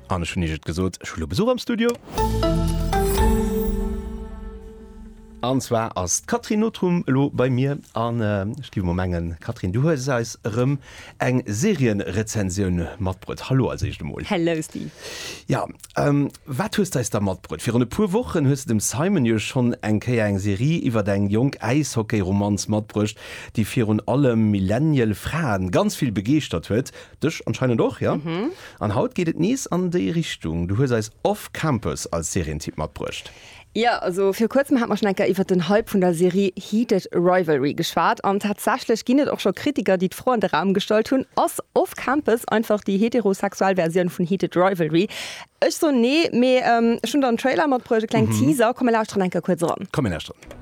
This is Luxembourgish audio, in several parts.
An ech hunn Iech et gesot, ech hu lo Besuch am Studio. An zwar ass d'Catherine Notrum elo bei mir an ech gi mol mengen, Catherine, du hues eis erëm eng Serienrezensioun matbruet. Hallo als éischt emol. Hello Steve. Jo, wat hues d'eis da matbruet? Virun e puer Wochen hues de dem Simon jo schonn eng Kéier eng Serie iwwer eng jonk Äishockeyromanz matbruecht, déi virun allem Millennial Frae ganz vill begeeschtert huet. Dech anscheinend och, ja? An haut geet et nees an déi Richtung. Du hues eis Off Campus als Serientipp matbruecht. Jo, also viru kuerzem hat mer schon eng Kéier iwwert den Hype vun der Serie Heated Rivalry geschwat. An tatsächlech ginn et och scho Kritiker, déi d'Fro an de Raum gestallt hunn, Ass Off Campus einfach déi heterosexuell Versioun vun Heated Rivalry? Ech soen nee, mee ech hunn der en Trailer matbruecht, e kleng Teaser. Komm mir lauschteren eng Kéier kuerz eran. Komm mir lauschteren.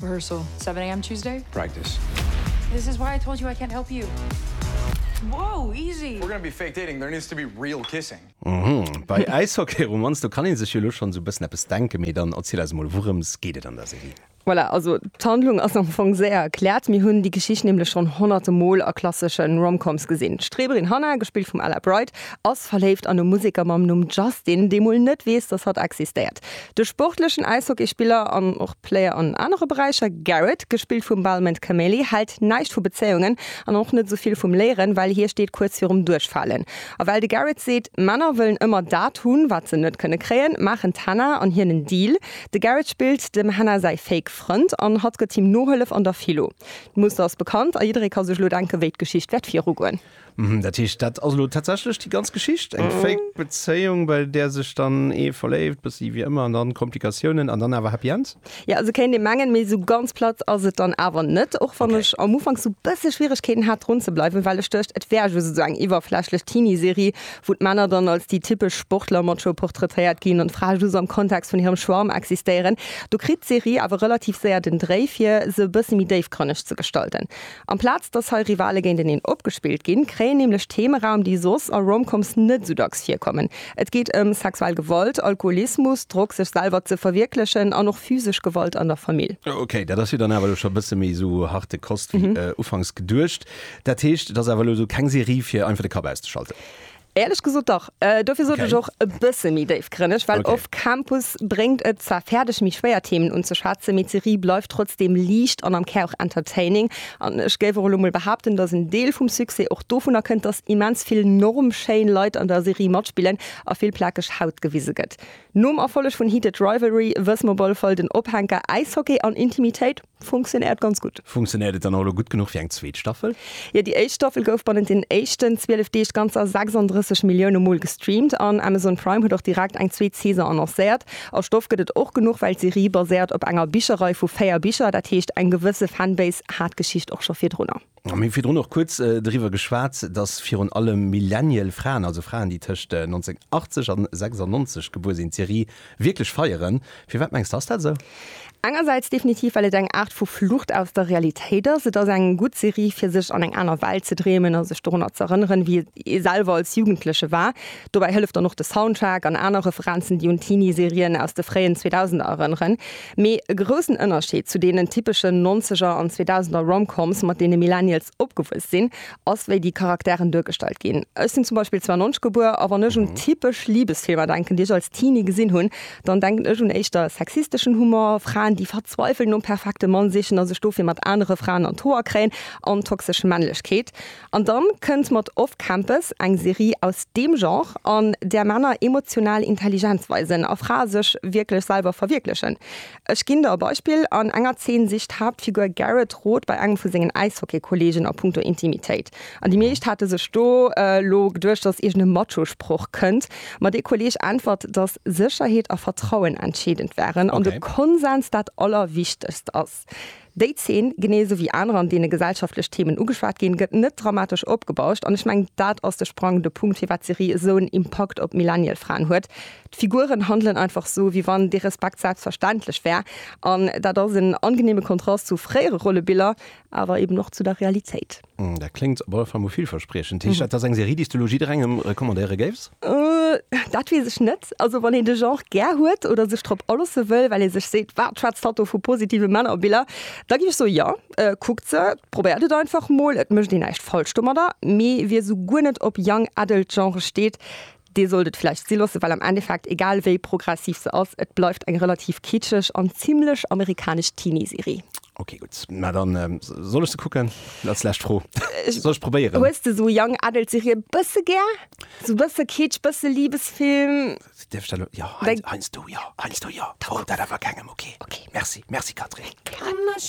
Rehearsal 7 am Tuesday. Practice. This is why I told you I can't help you. Wow, easy! We're gonna be fake dating, there needs to be real kissing. Uhmm, bei Äishockeyromanz, do kann een sech jo lo schonn esou e bëssen eppes denken, mee dann erziel eis emol, wourëms geet et an der Serie? Voilà, also d'Handlung ass am Fong séier erkläert. Mir hunn déi Geschicht nämlech schonn honnerte Mol a klassesche Rom-Coms gesinn. D'Streberin Hannah, gespillt vum Ella Bright, ass verléift an e Museker mam Numm Justin, dee mol net weess, dass hatt existéiert. De sportlechen Äishockeyspiller an och. Player an anere Beräicher. Garrett, gespillt vum Balmond Cameli, hält näischt vu Bezéiungen an och net esou vill vum Léieren, well hie steet kuerz virum Duerchfalen. A well de Garrett seet, Männer wëllen ëmmer dat hunn, wat se net kënne kréien, maachen d'Hannah an hien en Deal. De Garrett spillt dem Hannah säi fake Frënd an hatt gëtt him Nohëllef an der Philo. D'Muster ass bekannt a jidderee ka sech elo denken, wéi d'Geschicht wäert virugoen. Mhm, dat heescht, dat ass elo tatsächlech déi ganz Geschicht, eng mhm. fake Bezéiung, bei der sech dann ee verléift, bëssi wie ëmmer an dann Komplikatiounen an dann awer Happy End? Ja, also kéint ee mengen, méi sou ganz platt ass et dann awer net, och wann ech okay. am Ufank so bësse Schwieregkeeten hat run ze bleiwen, well ech duercht et wär jo sou eng iwwerflächlech Teenie-Serie, wou d'Männer dann als déi typesch Sportler Macho porträtéiert ginn an d'Frae just am Kontext vun hirem Schwarm existéieren. Du kritt d'Serie awer relativ séier den Dréi fir se bësse méi déifgrënneg ze gestalten. Amplaz dass hei Rivale géinteneen opgespillt ginn, kréien nämlech Theme Raum, déi soss a Rom-Coms net esou dacks virkommen. Et geet ëm sexuell Gewalt, Alkoholismus, Drock, sech selwer ze verwierklechen an och physesch Gewalt an der Famill. Ok, dat ass jo dann awer elo scho e bësse méi esou harte Kost wéi ufanks geduecht. Dat heescht, et ass awer elo esou keng Serie fir einfach de Kapp auszeschalten? Éierlech gesot dach. Dofir sot ech och e bësse méi déifgrënneg, well Off Campus bréngt et zwar fäerdeg méi schwéier Themen unzeschwätzen, mee d'Serie bleift trotzdeem liicht an am Kär och entertaining. An ech géif och elo mol behaapten, datt en Deel vum Succès och dovunner kënnt, datt immens vill norm schéin Leit an der Serie matspillen a vill plakeg Haut gewise gëtt. Nom Erfolleg vun Heated Rivalry wëss mer op alle Fall, den Ophänker Äishockey an Intimitéit. Funktionéiert ganz gutt. Funktionéiert et dann och elo gutt genuch fir eng zweet Staffel? Jo, déi éischt Staffel gouf bannent den éischten 12 Deeg ganzer 36 Millioune Mol gestreamt an Amazon Prime huet och direkt eng zweet Saison annoncéiert. A Stoff gëtt et och genuch, well d'Serie baséiert op enger Bicherrei vu véier Bicher, dat heescht eng gewësse Fanbase hat d'Geschicht och scho virdrunner. Mir hu virdrun och kuerz driwwer geschwat, datt virun allem Millennial Fraen, also Fraen, déi tëscht 1980 an 96 gebuer sinn, d'Serie wierklech feieren. Firwat mengs de, ass dat esou? Engersäits definitiv, well et eng Aart vu Flucht aus der Realitéit ass. Et ass eng gutt Serie, fir sech an eng aner Welt ze dreemen a sech dorunner ze erënneren, wéi et ee selwer als Jugendleche war. Dobäi hëlleft dann och de Soundtrack an aner Referenzen, déi un Teenie-Serien aus de fréien Zweedausender erënneren. Mee e groussen Ënnerscheed zu deenen typeschen Nonzeger an Zweedausender Rom-Coms, mat deene Millennials opgewuess sinn, ass, wéi déi Charakteren duergestallt ginn. Ech sinn zum Beispill 92 gebuer, a wann ech un typesch Libesfilmer denken, déi ech als Teenie gesinn hunn, dann denken ech un éischter sexisteschen Humor, Fraen, déi verzweiwelt nom perfekte Mann sichen a sech dofir mat anere Fraen an d'Hoer kréien, an toxesch Männlechkeet. An dann kënnt mat Off Campus eng Serie aus deem Genre, an där Männer emotional Intelligenz weisen a Frae sech wierklech selwer verwierklechen. Ech ginn der e Beispill, An enger Zeen sicht d'Haaptfigur Garrett Rot bei engem vu sengen Äishockeykollegen a punkto Intimitéit. An déi meescht hate sech do lo geduecht, datt iergend e Macho-Sproch kënnt, ma dee Kolleg äntwert, datt Sécherheet a Vertrauen entscheedend wären an de Konsens dat Allerwichtegst as. Déi Zeen, genee esou wéi aner, an deene gesellschaftlech Themen ugeschwat ginn, gëtt net dramatesch opgebauscht. An ech mengen, dat ass de sprangende Punkt, firwat d'Serie esou en Impakt op d'Millennial-Fraen huet. D'Figuren handelen einfach esou, wéi wann dee Respekt selbstverständlech wär. An dat ass en angeneeme Kontrast zu fréiere Rollebiller, awer eben och zu der Realitéit. Dat kléngt op alle Fall mol villverspriechend. Heescht dat, dass eng Serie, déi s de elo jidderengem recommandéiere géifs? Dat weess ech net. Also wann een de Genre gär huet oder sech drop alosse wëll, well ee sech seet, Wat schwätzt hatt do vu positive Männerbiller? Da géif ech soe, Jo, kuckt se, probéiert et einfach mol. Et mécht een näischt falsch domadder. Mee wie esou guer net op Young Adult Genre steet, Dir sollt et vläicht si loossen, well am Endeffekt, egal wéi progressiv se ass, et bleift eng relativ kitscheg an zimlech amerikanesch Teenie-Serie. Ok, gutt, mä da soll ech se kucken? Als lescht Fro, soll ech probéieren? Hues de esou Young Adult-Serien e bësse gär? Esou e bësse Kitsch, e bësse Libesfilm? Dierf ech dat elo? Jo, heiansdo jo, heiansdo jo. Verrot dat awer kengem, ok? Ok. Merci, merci Catherine. Gär.